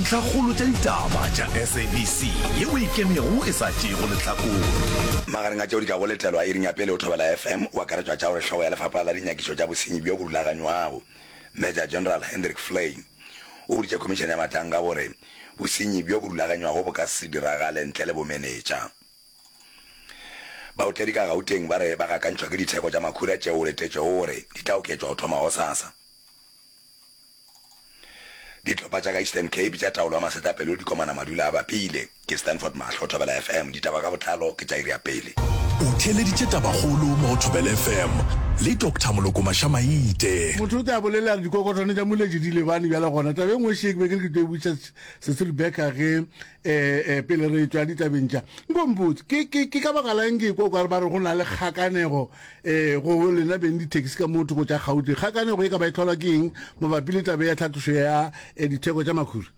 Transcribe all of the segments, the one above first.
Ntlhakgolo tša ditaba tša SABC ye o e kemego e sa tšeego lehlakore. Magareng a tšeo di ka go letelwa iring ya pele o Thobela FM, o akaretšwa tša gore hlogo ya Lefapha la Dinyakišo tša Bosenyi bjo bo Rulaganywago, Major General Hendrik Flein, o boditše Khomišene ya Matanka gore bosenyi bjo bo rulaganywago bo ka se diragale ntle le bomenetša. Baotledi ka Gauteng ba re ba gakantšhwa ke ditheko tša makhura tšeo go letetšwego gore di tla oketšwa go thoma gosasa. Dihlopha tša ka Eastern Cape tša taolo ya masetlapelo di komana madula a bapile. Ke Stanford Mahlo, Thobela FM, ditaba ka botlalo ke tša iri ya pele. O theeleditše tabakgolo mo go Thobela FM le Doctor Moloko Mašamaite. Motho o tla bolela re dikokotwane tša moletše di lebane bjale gona. Taba e nngwe še ke be ke re ke tlo e botšiša Cecil Becker ge E-e, pele re tšwa ditabeng tša, nko mpotse, ke, ke, ke ka baka lang ke kwa kware ba re go na le kgakanego e, go lena beng dithekisi ka mo thoko tša Gauteng. Kgakanego e ka ba e tlholwa ke eng mabapi le tabe ya tlhatlošo ya e, ditheko tša makhura?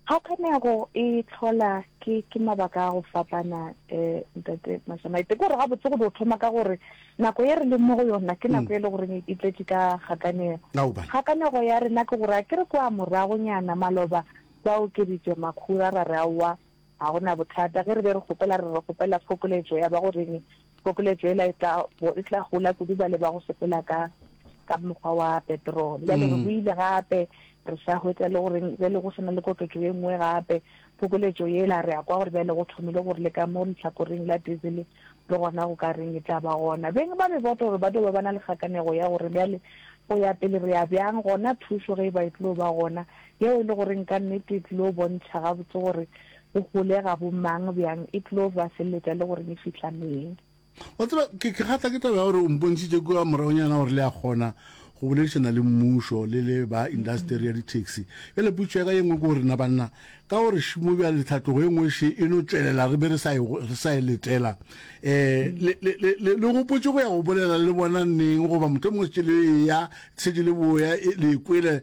Kgakanego e tlhola ke, ke mabaka a go fapana, e, Ntate Mashamaite. Ke gore gabotse go do thoma ka gore nako ye re leng mo go yona ke nako mm. e le goreng e tletše ka kgakanego. Kgakanego ya rena ke gore a ke re kwa moragonyana maloba Ba okeditše, Makhura, ra re, Aowa, ga go na bothata. Ge re be re kgopela, re re, Re kgopela phokoletšo ya ba go reng? Phokoletšo yela e tla bo e tla gola kudu bale ba go sepela ka, ka mokgwa wa petrol. Bjale re boile gape, re sa hwetša le go reng, bjale go se na le koketšo ye nngwe gape. Phokoletšo yela, re a kwa gore bjale go thomile go re le ka mo lehlakoreng la diesel, le gona go ka reng e tla ba gona. Beng ba meboto gore ba tlo ba ba na le kgakanego ya go re, Bjale, go ya pele re ya bjang? Gona thušo ge e ba e tlo ba gona, yeo e le goreng ka nnete e tlilo bontšha gabotse gore go holega bo mang bjang, e tlilo ba feleletša le goreng e fihla neng. Wa tseba, ke kgatla ke taba ya gore o mpontšhitše kua moragonyana gore le a kgona go boledišana le mmušo le le ba indasteri ya di-taxi. Bjale potšo ya ka ye nngwe ke gore na banna ka gore šimo bjale tlhatlogo e nngwe še e no tšwelela re be re sa e, sa e letela um le, le, le, le, le gopotše go ya go bolela le bona neng goba mohlomongwe se tšele e ya se tšele boya e, le e kwele